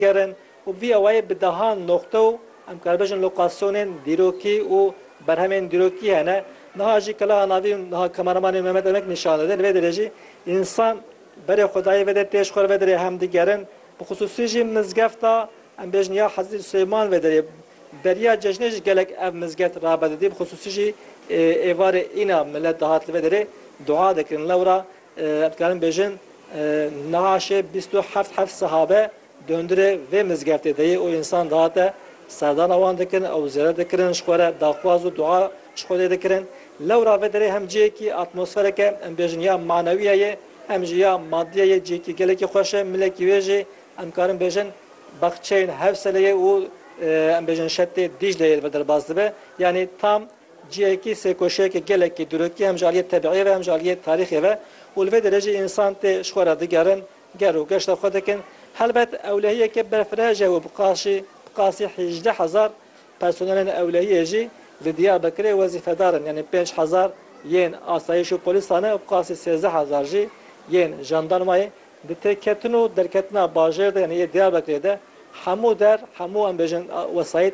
kirin û bi vî awayî bi deha noqte û em kar bêjin lokasyonên dîrokî û berhemên dîrokî hene. Niha jî keleha navî û niha kameramanê Mehmet Emek nîşan dide. Li vê derê jî însan berê xwedayî vedê pêş xwe li vê derê hem digerin. Bi xisûsî jî mizgefta em bêjin ya Hezrîtî Sileyman vê derê beriya cejnê jî gelek ev mizgeft rabe didî. Bi xisûsî jî êvarê îna milet dihat li vê derê dua dikirin. Lewra Em dikarin bêjin niha şê bîst û heft heft sahabe dondurê vê mizgeftê de yê û însan dihate serdana wan dikin ew zêret dikirin ji xwe re daxwaz û dua ji xwe dê dikirin. Lewra vê derê hem cihekî atmosfereke em bêjin ya manewiye yê hem jî ya madiye yê cihekî gelekî xweş e milekî wê jî em dikarin bêjin baxçeyên Hewseleyê û em bêjin şetê Dîcleyê li vir derbas dibe yanî tam Cihekî sêrkoşiyeke gelekî dirokî ye hem ji aliyê tebîîyê ve hem ji aliyê tarîxê ve û li vê derejê însan tê ji xwe re digerin, ger û geşta xwe dikin. Helbet ewlehiyeke berfirehij e û bi qasî bi qasî hîjdeh hezar personelên ewlehiyê jî li Diyarbekirê wezîfedar in yanî pênc hezar yên asayîş û polîsan e û bi qasî sêzdeh hezar jî yên jandarmayê. Di têketin û derketina bajêr de yanî yê Diyarbekirê de hemû der hemû em bêjin wesayît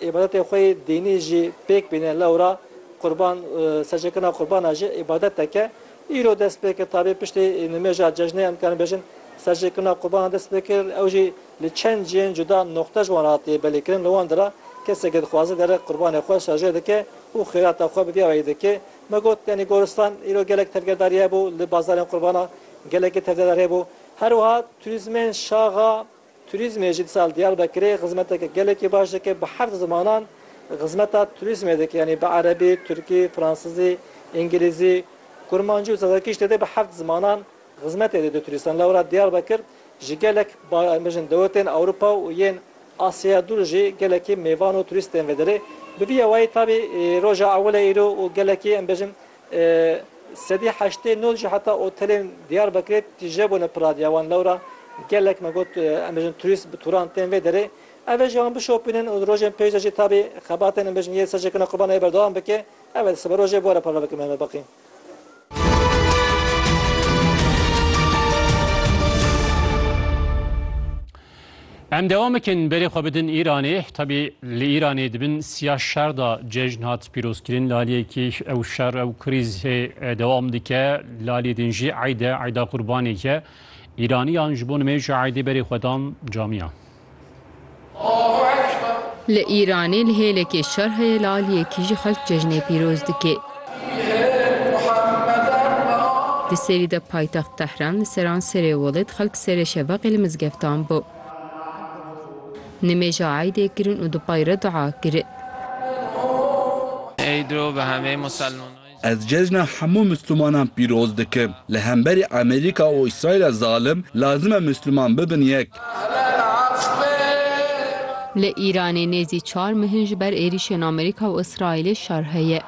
Îbadetên xwe yê dînî jî pêk bîne lewra qurban seçêkirina qurbana jî îbadeteke îro dest pê kir tabî piştî nimêja cejnê em dikarin bêjin seçêkirina qurbanan dest pê kir ew jî li çend cihên cuda noqte ji wan re hatiye belêkirin li wan de re keseke dixwaze dere qurbanê xwe şerjê dike û xêrata xwe bi vî awayî dike me got yanî goristan îro gelek tevgerdariye hebû li bazarên qurbana gelekî tevgerdar hebû herwiha turîzmên şaxa Turîzmê jî disal Diyarbekirê xizmeteke gelekî baş dike. Bi heft zimanan xizmeta turîzmê dike. Yanî bi erebî, tirkî, fransizî, îngilîzî, kurmancî û zazakî ji tede bi heft zimanan xizmetê dide turîstan. Lewra Diyarbekir ji gelek bêjin dewletên Ewropa û yên Asyaya dûr jî gelekî mêvan û turîst tên vederê. Bi vî yawayî tabî roja ewil e îro û gelekî em bêjin Sedî heştê nod jî heta otelên Diyarbekirê tije bûne piradiya wan. Lewra gelek me got em bêjin turîst bi turan tên vê derê. Ev ê jî wan bişopînin û di rojên pêş de jî tabî xebatên em bêjin yê ser jêkirina qurbanayê berdewam bike. Ev e di siberojê bore parve bikin Mehmet Beqî. Em dewam bikin berê xwe bidin Îranê. Tebî li Îranê di bin siya şer de cejn hat pîrozkirin. Li aliyê yekê ew şer ew krîz hê dewam dike. Li aliyê din jî eyd e, eyda qurbanê ye. Îraniyan ji bo nimêja eydê berê xwe dan camiyan. Li Îranê li hêlekê şer heye li aliyekî jî xelk cejnê pîroz dike. Di serî de paytext Tehran li seranserê welêt xelk serê şevaqê li mizgeftan bû nimêja eydê kirin û di pay re dua kirin. Ez cejna hemû Mislimanan pîroz dikim. Li hemberî Amerîka û Îsraîla zalim lazim e Misliman bibin yek. Li Îranê nêzî çar mehin ji ber êrîşên Amerîka û Îsraîlê şer heye.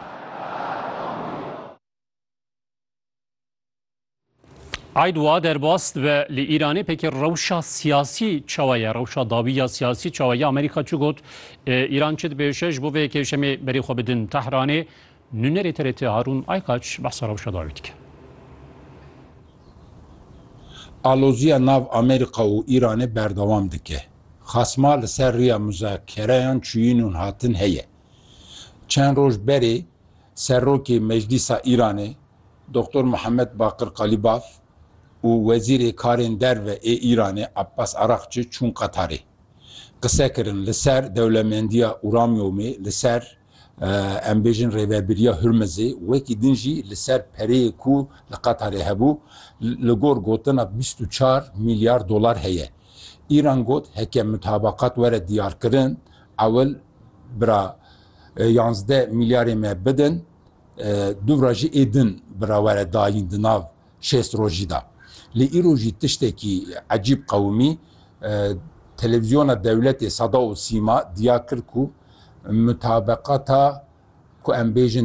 Eid wiha derbas dibe, Li Îranê pêkê rewşa siyasî çawa ye, rewşa dawî ya siyasî çawa ye? Amerîka çi got? Îran çi dibêje? Ji bo vê yekê yekşemê berê xwe bidin Tehranê. Nûnerê TRT Harûn Aykaç behsa rewşa dawî dike. Aloziya nav Amerîka û Îranê berdewam dike. Xasma li ser riya muzakereyan çûyîn û hatin heye. Çend roj berê Serokê Meclîsa Îranê Doktor Muhammed Baqir Qalîbaf û Wezîrê Karên Derve ê Îranê Abbas Araqçi çûn Qetarê. Qise kirin li ser dewlemendiya Uramyomê li ser Em bêjin Rêvebiriya Hurmizê wekî din jî li ser pereyê ku li Qatarê hebû, li gor gotina bîst û çar mîlyar dolar heye. Îran got heke mutabakat were diyarkirin, ewil bira yanzdeh mîlyarê me bidin, dûvra jî ê din bira were dayîn di nav Şêst roj jî da. Lê îro jî tiştekî ecîb qewimî, Televîzyona Dewletê Seda û Sîma dîya kir ku mutabeqata ku em bêjin,